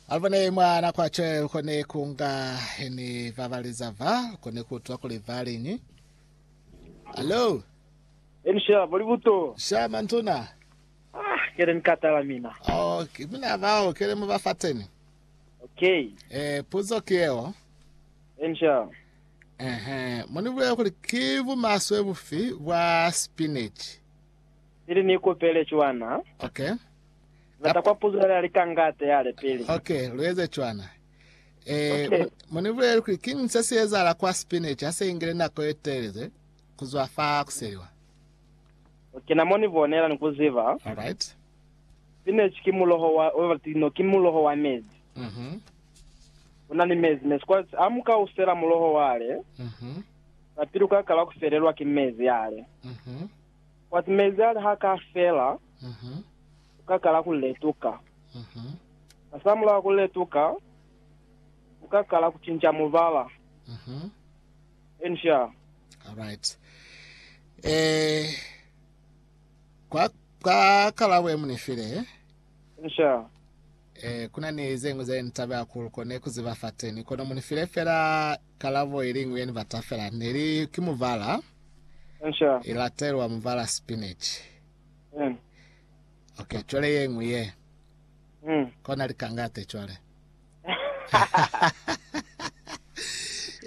alubone mwana kwatshe lukone kunga heni vabaleza va lukone kutwa kuli valiñi alo Elisha boli buto. shama ntuna Ah, kele nikatala mina. oh, ki- mina vao kele mu va fateni Okay. eh, puzo ki yeo Elisha. ehe munibulele kuli ki bumaswe bufi bwa spinach Ili ni kupele cwana. Ok. Bata kwa puzo yale ali ka ngate yale pili. Ok, lu eze cwana. Eh, Ok. mu- munibulele kuli king se si ezahala kwa spinach ha se ingile nako ye teleze kuzwa fa kuseliwa. Okay, na mo ni bonela ni ku ziba. Alright. Spinach ki muloho wa, wa tino, ki muloho wa mezi. Mhm. Una ni mezi, mezi. Kwa, ha mu ka usela muloho wale, Mhm. sa pili u ka kala ku felelwa ki mezi yale. Mhm. Kwati mezi ali ha ka fela, ku ka kala ku letuka. Hasamulaho ku letuka, ku ka kala ku cinca mubala. Eni sha? Alright. Eh, kwa, kwa kala bwe muni file. Eni sha? Eh, kuna ni zeñwi ze ni taba ya ku lukone ku ziba fateni. Kono muni file fela Kalabo iliñwi ye ni bata fela ne li, ki muvala, i latelwa muvala spinach. Ok, cwale yeñwi ye. Kona likangate cwale.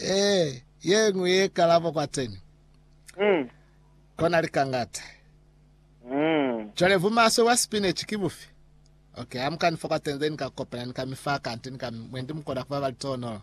Eh, yeñwi ye kalabo kwateni. Kona likangate. Cwale bumaswe bwa spinach ki bufi? Ok, amuka ni fa kwateni, then ni ka kopela, ni ka mi fa kanti, ni ka mi, mwendi mukona kuba bali toonolo.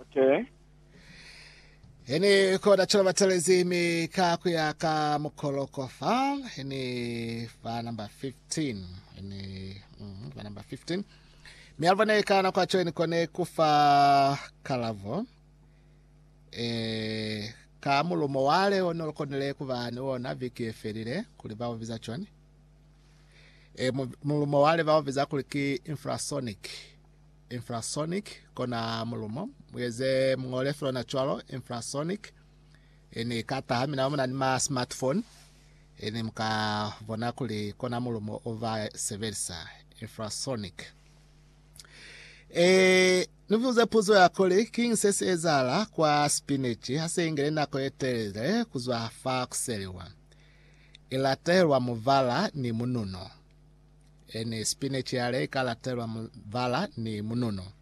Okay. Hini koda chola batelezi mi ka kuya ka mukoloko fa hini fa number 15 hini mm, fa number 15 mi alvane ka na kwa choeni kone kufa kalavo eh ka mulumo wale one lokonele kuba ni wona viki efelile kuli ba obiza choni eh mulumo wale ba obiza kuli ki infrasonic infrasonic, kona mulumo mueze mungole felona cwalo infrasonic ene ikata ha mina muna ni ma smartphone ene muka bona kuli kona mulumo ova sebelisa infrasonic e nivuze puzo ya kuli king se se ezala kwa spinach ha se ingele nako e telele kuzwa fa kuseliwa ilatelwa muvala ni mununo Ene spinach yale ika latelwa mubala ni mununo.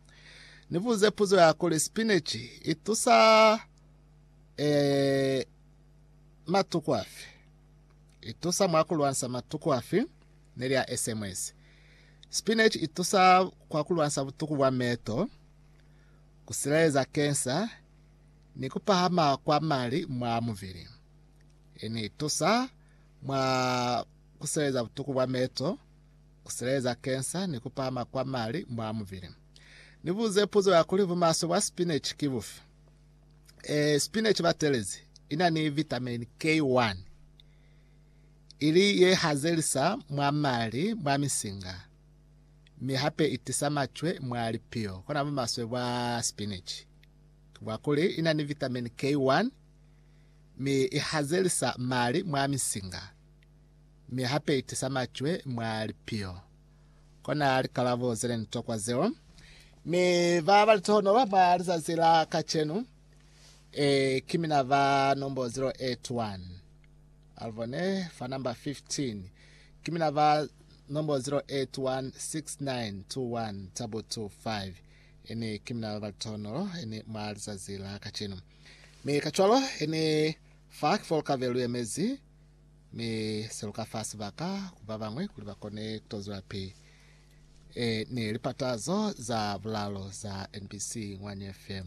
Ni buze puzo ya kuli spinach i tusa e, matuku afi? I tusa mwa kulwansa matuku afi? Ni lya SMS. Spinach i tusa kwa kulwansa butuku bwa meto, kusileleza kensa, ni kupahama kwa mali mwa mubili. Ene i tusa mwa ku sileleza butuku bwa meto, ku sileleza kensa ni ku pahama kwa mali mwa mubili. Ni buze puzo ya kuli bumaswe bwa spinach ki bufi. E, spinach batelezi i na ni vitamin K1 ili ye hazelisa mwa mali mwa misinga mi hape i tisa macwe mwa lipiyo. Kona bumaswe bwa spinach ki bwa kuli i na ni vitamin K1 mi i hazelisa mali mwa misinga. mi ha peitisa macwe mwa lipiho. Kona likalabo zeli ni tokwa zeo. Mi ba ba litohonolo mwa lizazi la kacenu, e, ki mina ba nombo 081. Alvone, fa namba 15. Ki mina ba nombo 0816921 tabu 25. Ini ki mina ba ba litohonolo, ini mwa lizazi la kacenu. Mi kacwalo, ini fa kifolo kave lu yemezi, Mi se lu ka fa sibaka ku ba bañwi kuli ba kone ku to zwelapili ni lipatazo za bulalo za NBC Ngwani FM.